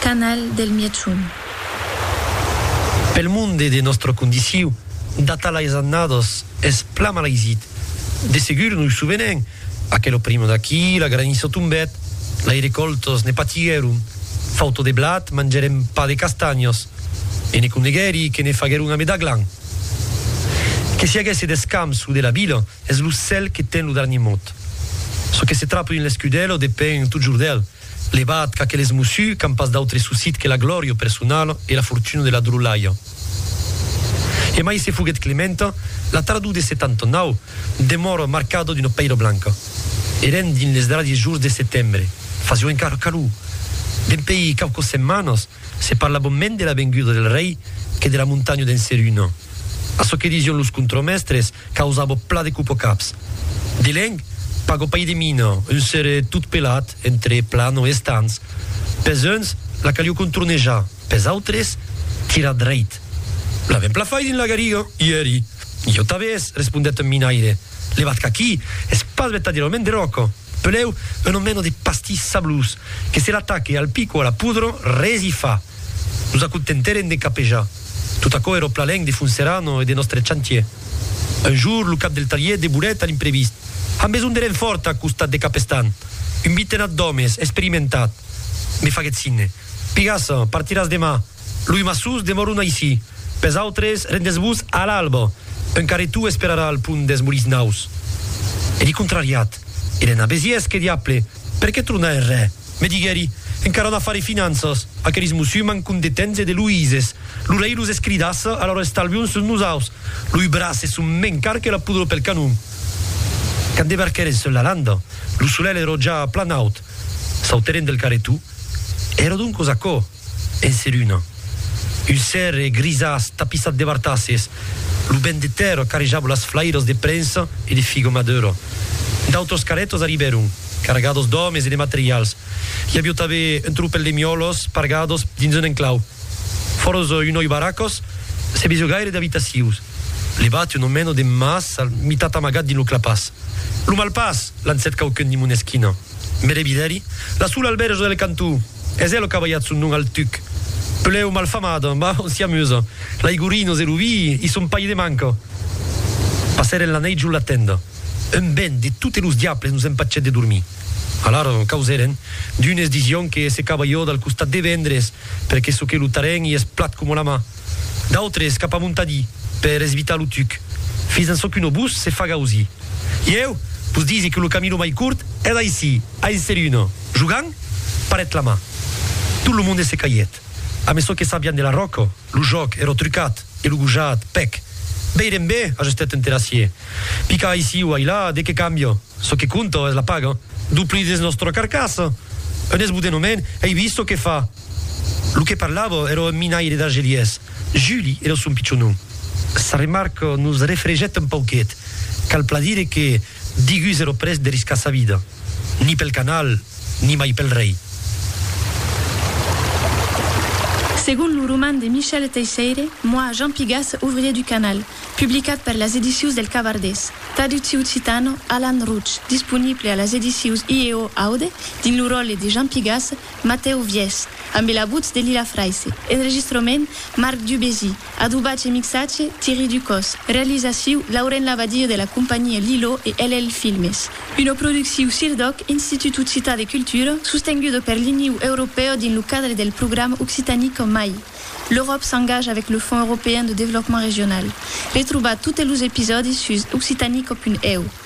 Canal del Mièchon. Pel monde de nòstra condiciu, data las annadas, es plan mal aisit. De segur nos sovenem, aquel oprimo d'aquí, la graniça tombèt, lai recòltas ne patiguèron, fauta de blat, mangèrem pas de castanhas, e ne coneguèri que ne faguèron a Medaglan. Que s'i aguèsse d'escamps lo de la vila, es lo cèl que ten lo darnier mot. Çò que se trapa dins l'escudèla depend totjorn d'el. Levat qu'aqueles mossus qu'an pas d'autre sussit que la glòria personala e la fortuna de la drolhalha. Emai se foguèt Clementa, la tardor de 79, demòra marcada d'una pèira blanca. Èrem dins les darriers jours de setembre, fasiá encara calor. Dempèi quauquas setmanas, se parlava mens de la venguda del rei que de la montanha d'en Seruna. Açò que disián los contremèstres, Causabo pla de cupocaps. Dileng, pago pai de mina, un sere tot pelat, entre plan o estans. Pes uns, la calió contornejar, pes autres, tirar dreit. La vem pla fai dins la gariga, i eri. Ieu tabés, respondèt un minaire, levat qu'aquí es pas vertadièrament de ròca, peleu un omeno de pastís sablós, que se l'ataque al pico a la pudra, res i fa. Nos acontentèrem de capejar. Tot aquò èra au plalenc de Fonserrano e de nòstre chantier. Un jour, lo cap del talhièr deborèt a l'imprevist. Am besonh de renfòrt a costat de Capestan. Un vitenat d'òmes, experimentat. Me faguèt signe. Pigassa, partiràs demà. Loi maçons demòron aicí. Pes autres, rendètz-vos a l'alba. Un carretó esperarà al pont deth Morisnaus. Èri contrariat. Èren a Besiés, que diable! Per qué tronar es rè? Me diguèri, encara n'a faré finanças, aqueris musulmans condetents e deluïses. Lo rei los escridassa, alòra estalvion sus nosaus. Loi braces son mens car que la poudre pel canon. Quand debarquèren sus la landa, lo solelh èrò ja plan aut. Sautèren del carretou. Èrò doncos aquò. En seruna. Un cèrre grisàs tapissat de bartasses. Lo vent de tèrra carrejava las flairas de prensa e de figa madura. D'autras carrètas arribèron, cargadas d'òmes e de materials. I aviá tanben un tropèl de miòlas pargadas dins un enclau. Fòras un noi barracas, se vesiá gaire d'abitacions. Levat un omena de mas al mitat amagat dins lo clapàs. Lo malpàs! lancèt quauqu'un dins mon esquina. Mere vidèri, la sola al bèrge del cantó, es ela qu'a balhat son nom al tuc. Pelèu malfamada, mas on s'i amusa. L'aigorinos e lo vi i son pas de manca. Passèren la nèit jos la tenda. Un vent de totes los diables nos empachèt de dormir. Alara causèren. D'unes disián que se cabalhòt al costat de Vendres, perque çò que lo tarèn i es plat coma la mà. d'autres cap a Montadi per esvitar lo tuc, fins en çò qu'un obús se faga ausir. Ieu vos disi que lo camino mai curt es d'aicí a Enseruna. Jogant, parèt la man. Tot lo monde se caiet. A meçò que sabián de la ròca, lo jòc èra trucat e lo gojat, pèc. Veirem be, ajustèt un terrassier. Picar aicí o ailà, de qué cambia? Çò que compta es la paga. Dupli dins nòstra carcassa! Un esbodenament, ei vist çò que fa! Lo que parlava èra un minaire d'Argelièrs, Juli èra son pichon nom. Sa remarca nos refregèt un pauquet. Cal plan dire que Digus èra près de riscar sa vida, ni pel canal, ni mai pel rei. Segon lo roman de Michel Teisseire, Moi, Jean Pigas, ouvrier du canal, publicat per las edicius del Cavardés, traducciu occitano, Alan Rouch, disponible a las edicius IEO Aude dins lo ròtle de Jean Pigas, Matèu Vièch, ambe la votz de Lila Fraisse. Enregistrament, Marc Dubézy. Adobatge e mixatge, Thierry Ducos. Realizaciu, Lauren Labadie de la companhia Lilo e LL Filmes. Una producciu CIRDOC, Institut Occitan de Cultura, sostenguda per l'Iniu Europèu dins lo cadre del programa Occitanie qu'en mai. L'Euròp s'engaja avec le Fonds Européen de Développement Régional. Retrobar totes los episòdis sus occitanico.eu.